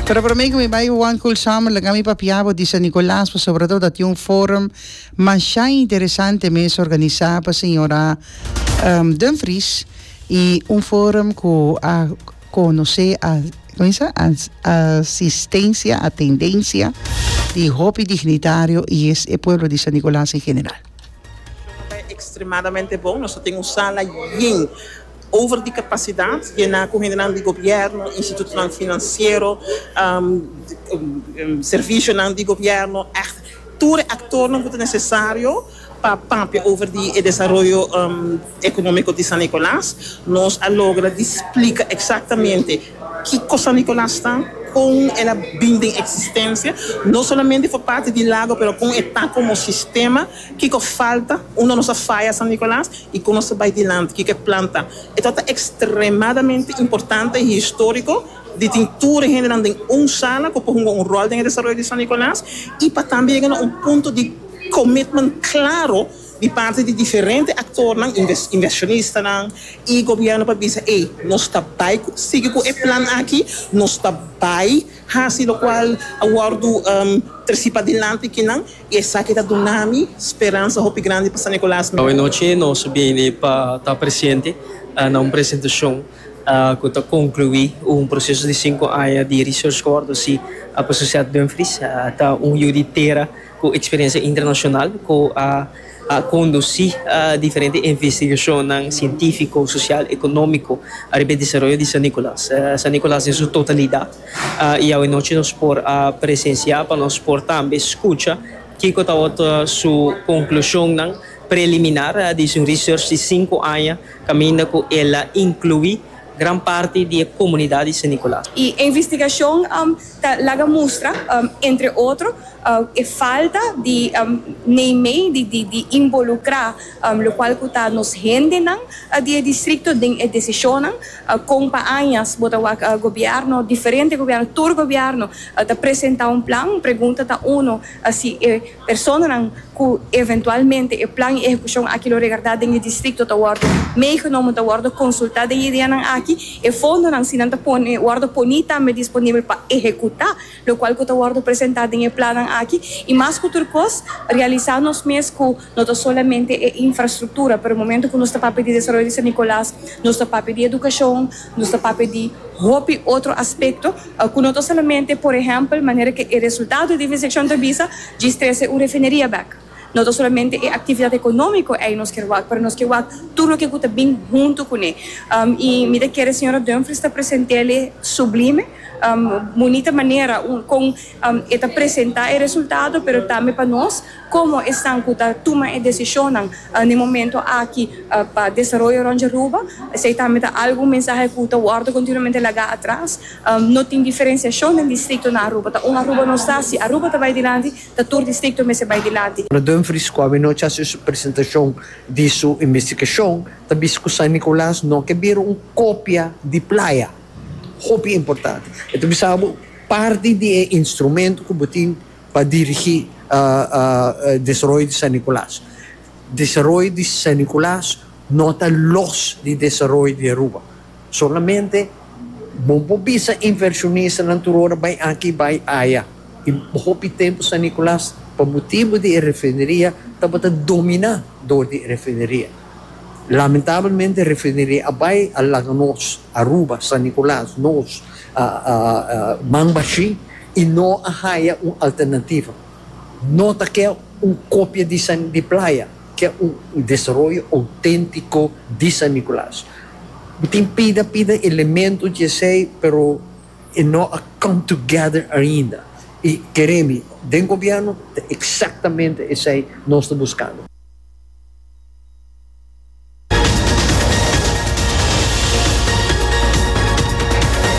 Pero prome cu mi bay Juan Culsam laga mi papia bo di San Nicolas pasobra ta tin un forum masha interesante mes organisa pa señora Dumfries y un forum cu a conoce a como se dice asistencia a tendencia di hopi dignitario y es e pueblo di San Nicolas en general. Nos ta extremadamente bon nos ta tin un sala yin. over di kapasidat y na cu hendenan di gobierno, institutonan financiero, servicionan di gobierno, echt tur e actornan cu ta necesario pa papia over di e desaroyo economico di San Nicolas. Nos a logra di splica exactamente kico San Nicolas ta, con el a bin den existencia, no solamente for parti di lago pero con e ta como sistema. Kiko falta unda nos a faya San Nicolas y con nos ta bay dilanti? Kiko e planta? E trata extremadamente importante y historico di tin tur e hendenan den un sala cu por hunga un rol den e desaroyo di San Nicolas y pa tambe yega na un punto di commitment claro di parti di diferente actornan, inversionistanan y gobierno pa bisa ey nos ta bay sigui cu e plan aki, nos ta bay haci locual a wordo treci padilanti kinan. I esaki ta duna mi speransa hopi grandi pa San Nicolas. Awe nochi nos a bieni pa ta presente na un presentacion cu ta conclui un proceso di cinco aña di research cu a wordo haci pa Sociedad Dumfries. Ta un yu di tera cu experiencia internacional cu a conduci diferente investigacionnan cientifico, social, economico riba e desaroyo di San Nicolas. San Nicolas den su totalidad. y awe nochi nos por a presencia pa nos por tambe scucha kico ta otro su conclusionnan preliminar. A dici un research di cinco aña caminda cu el a inclui gran parti di e comunidad di San Nicolas. Y e investigacion ta laga mustra entre otro e falta di neimey di involucra. lokual ku ta nos hendenan di e distrikto den e desishonnan, kon pa añas bo ta wak gobièrnu, diferente gobièrnu, tur gobièrnu ta presentá un plan, pregunta ta uno si e personanan ku eventualmente e plan i ehekushon aki lo regardá den e distrikto ta wòrdu meegenomen, ta wòrdu konsultá den e ideanan aki, e fondonan si nan ta pone wòrdu poní tambe disponibel pa ehekutá. lokual ku ta wòrdu presentá den e plannan aki, i mas ku tur kos, realisá nos mes ku no ta solamente e infrastruktura, pero momentu ku nos ta papia di desaroyo di San Nikolas, nos ta papia di edukashon, nos ta papia di hopi otro aspekto ku no ta solamente, por ehèmpel, manera ku e resultado di investigacion ta bisa, djis trese un refineria bèk. No ta solamente e actividad economico ei nos kier wak, pero nos kier wak tur loke cu ta bin hunto cune. Y mi ta kier e señora Dumfries ta present'ele sublime, bunita manera con e ta presenta e resultado, pero tambe pa nos como esnan cu ta tuma e decisionnan n'e momento aki pa desaroyo rond Jaruba, esey tambe ta algo, un mensahe cu ta wordo continuamente laga atras. No tin diferenciacion den districtonan Aruba ta un Aruba nos ta, si Aruba ta bay dilanti, ta tur distrikto mester bai dilanti. Radun Friscovi nochi a haci su presentacion di su investigacion, ta bisti cu San Nicolas no ke bira un copia di playa. Hopi importante. E ta bisa abo, parti di e instrumento cu bo tin pa dirigi desaroyo di San Nicolas, desaroyo di San Nicolas no ta los di desaroyo di Aruba. Solamente bo por bisa inversionistanan tur ora bai aki i bai aya. I hopi tempu San Nicolas, pa motibu di e refineria, tabata dominá dor di e refineria. Lamentablemente e refineria a bai, a laga nos, Aruba, San Nicolas, nos, man bashí i no a haya un alternativa. No ta ke un kopia di Playa. Ke un desaroyo outéntiko di San Nikolaas. Mi tin pida pida elemento dje esei, pero e no a come together ainda. I keré mi, den gobièrnu ta eksaktamente esei nos ta buskando.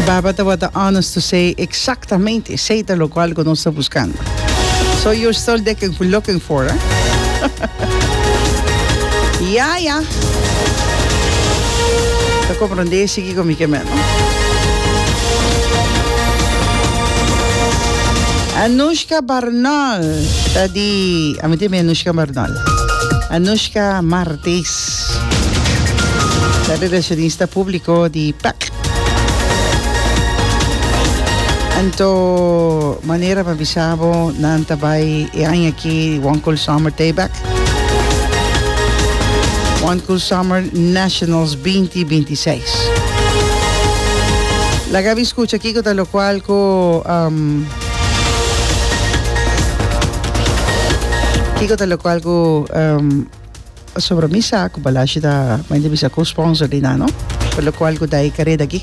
Baba tabata honest to say exactamente esey ta locual cu nos ta buscando. So you're still looking, looking for, eh? ya, ya. Te comprende, sigue con mi que menos. Anushka Barnal, ta di, a mí Anushka Barnal. Anushka Martis, la relacionista público di PAC. Anto manera pa bisa bo nan ta bai e aña aki One Cool Summer Tayback. One Cool Summer Nationals 2026. Laga mi escucha kiko ta lo cual ku um, Kiko ta lokual ku pasobra mi sa ku Balashi ta mai di bisa ku sponsor di nan no pa lokual ku dai kare daki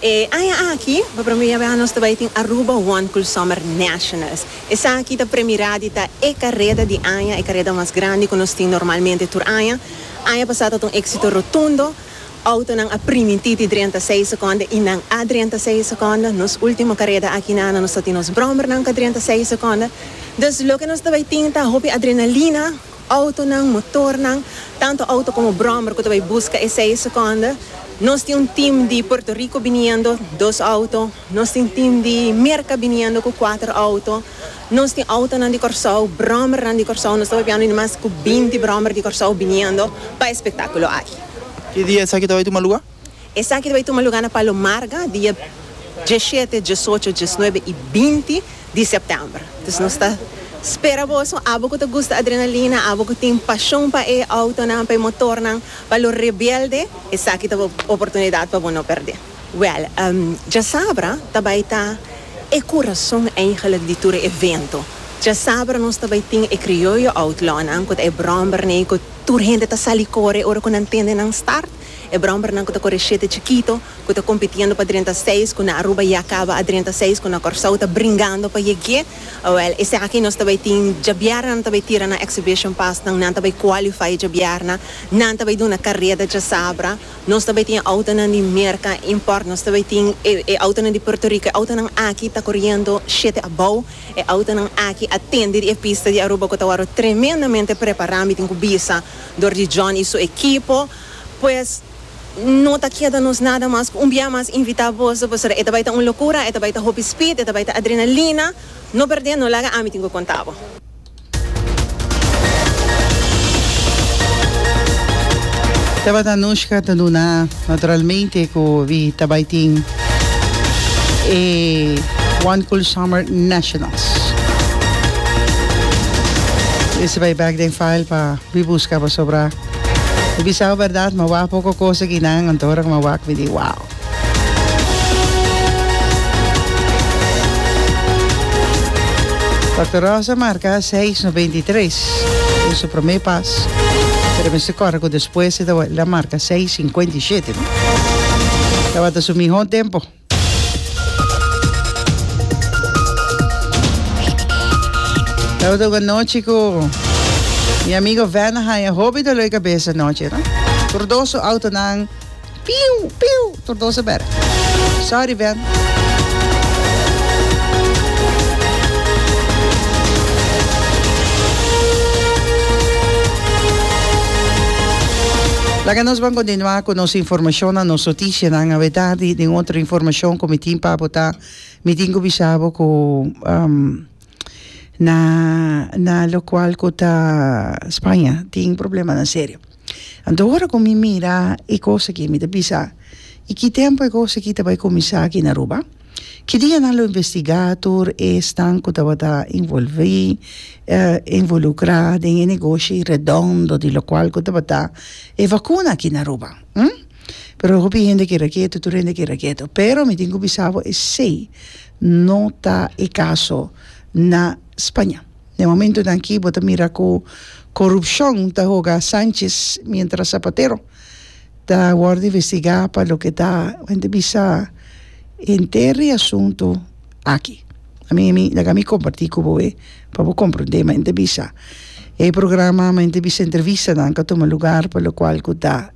E aña aki, pa promé bes nos ta bai tin Aruba One Cool Summer Nationals. Esaki ta premirá di ta e kareda di aña, e kareda mas grandi ku nos tin normalmente tur aña. Aña pasá tabata un éksito rotundo. Outonan a primintí di drenta seis sekonda i nan a drenta seis sekonda. Nos último kareda aki na ano nos ta tin nos bròmbernan ku a drenta seis sekonda. Dus loke nos ta bai tin ta hopi adrenalina. Autonan, motornan, tanto auto como brommer cu ta bay busca esey e seconde. Nos tin un team di Puerto Rico biniendo, dos auto. Nos tin team di Merca biniendo cu cuater auto. Nos tin autonan di Corsou, brommernan di Corsou. Nos ta bay piando mas cu binti brommer di Corsou biniendo pa e spectaculo aki. Ki dia esaki ta bay tuma lugar? Esaki ta bai tuma lugá na Palo Marga dia diesshete, diesocho, diesnuebe i binti di sèptèmber. Dus nos ta spera boso, abo ku ta gusta adrenalina, abo ku tin pashon pa e outonan, pa e motornan, pa lo rebelde, esaki ta bo oportunidat pa bo no pèrdè. Wèl, diesabra ta bai ta e kurason eigentlik di tur e evento. Diesabra nos ta bai tin e Krioyo Outlawnan, ku ta e bròmberney ku tur hende ta sali kore ora ku nan tende nan start. E brombernan cu ta core shete chikito, cu ta compitiendo pa drenta seis, cu na Aruba ya caba a drenta seis, cu na Corsou ta bringando pa yeg'ye, awel, esaki nos ta bay tin, djabiarna nan ta bay tira nan exhibition pasnan, nan ta bay qualify djabiarna, nan ta bay duna careda djasabra, nos ta bay tin e autonan di Merca import, nos ta bay tin e e autonan di Puerto Rico, e autonan aki ta coriendo shete abou, e autonan aki a tende di e pista di Aruba cu ta worde tremendamente prepara, mi tin cu bisa. Dor di John i su ekipo, pues no ta keda nos nada mas ku un bia mas invitá boso pasobra e ta bai ta un lokura, e ta bai ta hopi spid, e ta bai ta adrenalina. No perdé, no laga ami tin ku konta bo. Tabata Anushka ta duna naturalmente ku wi ta bai tin e One Cool Summer National. Ese bay back den file pa wi busca pasobra mi bisao berdad ma wak poco cosa aki nan anto ora cu mi a wak mi di wow. Doctor Rosa marca seis no binti tres den su prome pas pero mester corre cu despues e ta wak el a marca seis cincuenta y shete no tabata su miho tempo. Lo do go nochi ku mi amigo Vena haña hopi doloi kabesa nochi, no. Tur dos su outonan piu piu tur dos a bèrk. Sorry Ven. Laga nos bon kontinuá ku nos informashonnan, nos notisianan. Si nan a weta di den otro informashon ku mi tin pa bo ta, mi tin ku bisa bo ku na na lokual ku ta Spaña tin problemanan serio. Anto ora ku mi mira e kos aki mi ta bisa i ki tempu e kos aki ta bai kuminsá aki na Aruba? Ki dianan lo investigá tur esnan ku tabata envolví envolukrá den e negoshi redondo di lokual ku tabata e vakuna aki na Aruba? pero hopi hende keda ketu tur hende keda ketu pero mi tin ku bisa bo esei no ta e kaso na Spaña den momentunan aki bo ta mira ku korupshon ta hoga Sánchis miéntras Sapatero ta wòrdu investigá pa loke ta ku hende bisa henter e asuntu aki a mi mi laga mi kompartí ku bo e pa bo komprondé men ta bisa e programa men ta bisa entrevistanan ka tuma lugar pa lokual ku ta.